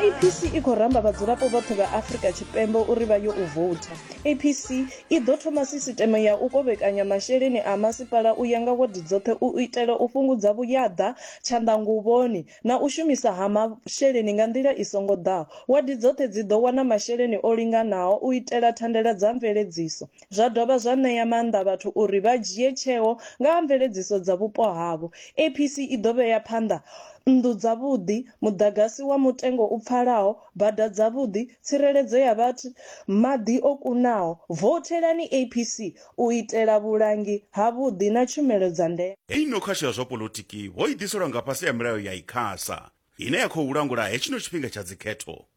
APC i khou ramba vhadzulapo vhoṱhe vha Afrika Tshipembe uri vha yo u voutha. APC i ḓo thoma sisiteme ya u kovhekanya masheleni a masipala u ya nga wadi dzoṱhe u itela u fhungudza vhuyaḓa, tshanḓanguvhoni na u shumisa ha masheleni nga nḓila i songo ḓaho. Wadi dzoṱhe dzi ḓo wana masheleni o linganaho u itela thandela dza mveledziso. zwa dovha zwa ṋea maanḓa vhathu uri vha dzhie tsheo nga ha mveledziso dza vhupo havho. APC i ḓo vhea phanḓa nnḓu dzavhuḓi, muḓagasi wa mutengo u pfalaho, bada dzavhuḓi, tsireledzo ya vhathu, maḓi o kunaho. Vouthelani APC u itela vhulangi havhuḓi na tshumelo dza ndeme. Heyi nokhasho ya zwa poḽotiki vho i ḓiselwa nga fhasi ha milayo ya Icasa, ine ya khou langula hetshino tshifhinga tsha dzikhetho.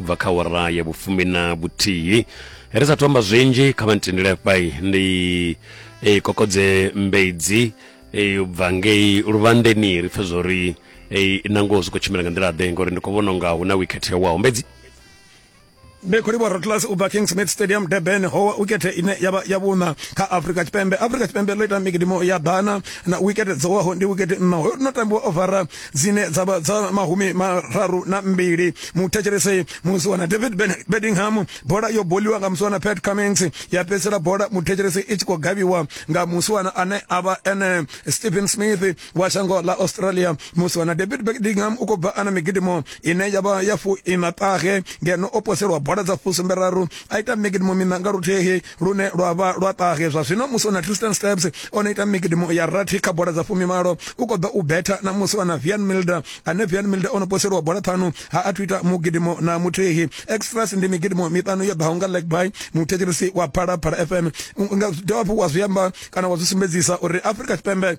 bva kha wara ya vhufumi na vhuthihi ri sa thomba zwinzhi kha vha ntendele fhai ndi e, kokodze mbedzi e, u bva ngei luvhandeni ri pfe zwo ri e, na ngoho zwi khou tshimbila nga nḓila ḓe ngori ndi khou vhona unga hu na wikhethe waho mbedzi ndi khou livhuwa rotlas u bva king smith stadium durban howa wikethe ine yavha ya vhuṋa kha afrika tshipembe afrika tshipembe ḽo ita mikidimo ya ḓana na wikethe dzowaho ndi wikethe nṋa hoyo no tambiwa ovara dzine dza vha dza mahumi mararu na mbili muthetshelese musiwana david bedingham bola yo boliwa nga musiwana pat cummings ya fhedzisela bola muthetshelese i tshi khou gavhiwa nga musiwana ane a vha ene stephen smith wa shango ḽa australia musiwana david bedingham u khou bva ana migidimo ine ya vha ya fuiṋaṱahe ngeno o poselwa bola dza fusumberaru a ita migidimo miṋa nga luthihi lune lwa vha lwa ṱahe zwa zwino musi o na Tristan Steps o no ita migidimo ya rathi kha bola dza fumimalo u khou ḓa u betha na musi o na Vian Milder ane Vian Milder o no poseliwa bola ṱhanu ha a thu ita mugidimo na muthihi extras ndi migidimo miṱanu yo ḓaho nga leg by muthetshelisi wa phalaphala fm nga dovha hafhu wa zwi amba kana wa zwi sumbedzisa uri afrika tshipembe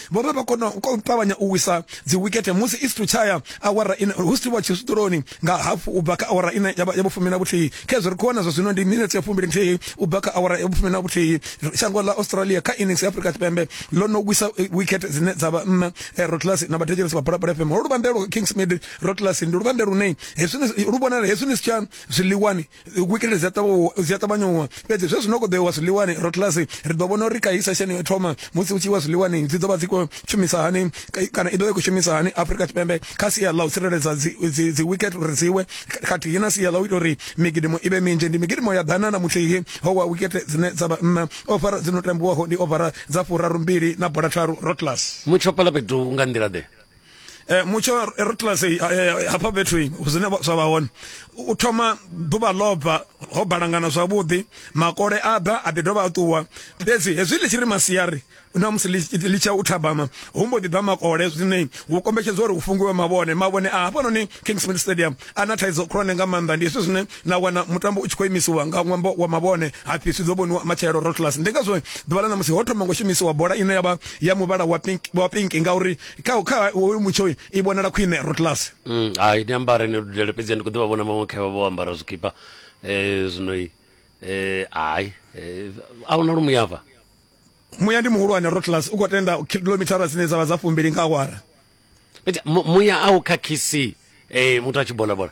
vho vha vha kona u ṱavhanya u wisa dzi wikete musi isitu tshaya awara ine hu siwa tshisutuloni nga hafu u bva kha awara ine ya vha fumi na vhuthihi khezwo ri khou wana zwa zwino ndi minetse ya fumbili nthihi u bva kha awara ya fumi na vhuthihi shango ḽa australia kha innings ya afrika tshipembe ḽo no wisa wikete dzine dza vha nṋa eh, rotlasi na vhathetshelesi vha bola fm ho luvhande lwa kingsmid rotlasi ndi luvhande lune hezwi lu vhonala hezwi ni si tsha zwiḽiwani wikilele dzi a ṱavhanya uwa fhedzi zwe zwino koḓoiwa zwiḽiwani rotlasi ri ḓo vhona uri kaisa sheni yo thoma musi u tshi iwa zwiḽiwani dzi ḓo vha dzi khou shumisa hani kana i ḓo vha i khou shumisa hani afrika tshipembe kha sia ḽa u tsireledza dzi wicket uri dzi we khathihi na sia ḽa u ita uri migidimo i vhe minzhi ndi migidimo ya ḓana na muthihi ho wa wicket dzine dza vha nṋa ofara dzi no tambiwaho ndi ofara dza furarumbili na bola tharu rotlasi mutsho pala fhethu nga nḓila ḓe eh mutsho ri tlase eh, eh, hafha fhethu zwine zwa vha hone u thoma ḓuvha ḽobva ho balangana zwavhuḓi makole a bva a ḓi dovha a ṱuwa fhedzi hezwi ḽi tshi ri masiari na musi ḽi tsha u thabama hu mbo ḓi bva makole zwine hu kombetshedzwa uri hu fungiwe mavhone mavhone a hafhanoni kingsmith stadium a na thaidzo khulwane nga maanḓa ndi hezwi zwine na wana mutambo u tshi khou imisiwa nga ṅwambo wa mavhone hapfi zwi ḓo vhoniwa matshelo rotlus ndi ngazwo ḓuvha ḽa na musi ho thoma ngo shumisiwa bola ine ya vha ya muvhala wa pink wa pink ngauri kha kha hoyu mutsho uyu i vhonala khwine rotlasi Mm, hai ni ambare ni dudele fhedzi ndi khou ḓi vha vhona maṅwe khaevha vho ambara zwikipa eh, zwino i eh, hai eh, a huna lu muyava muya ndi muhulwane rotlasi u khou tenda kilomithara dzine dza vha dza fumbili nga awara fhedzi mu- muya a u khakhisi eh, muthu a tshi bola bola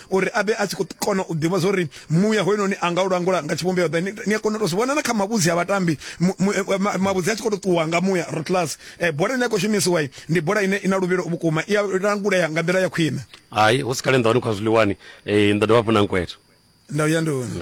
uri a vhe a tshi khou kona u ḓivha zwo ri muya hoyunoni a nga u langula nga tshivhumbeo ḓe ni a kona u tou zwi vhona na kha mavhudzi a vhatambi eh, mavhudzi a tshi khou tou ṱuwa nga muya rotlas um eh, bola ine ya khou shumisiwa ndi bola ine i na luvhilo vhukuma i a langulea nga nḓila ya khwine hai hu si kale nḓa wani khwa zwiḽiwani um eh, nḓa dovha hafhu na nkweto nda u ya nduni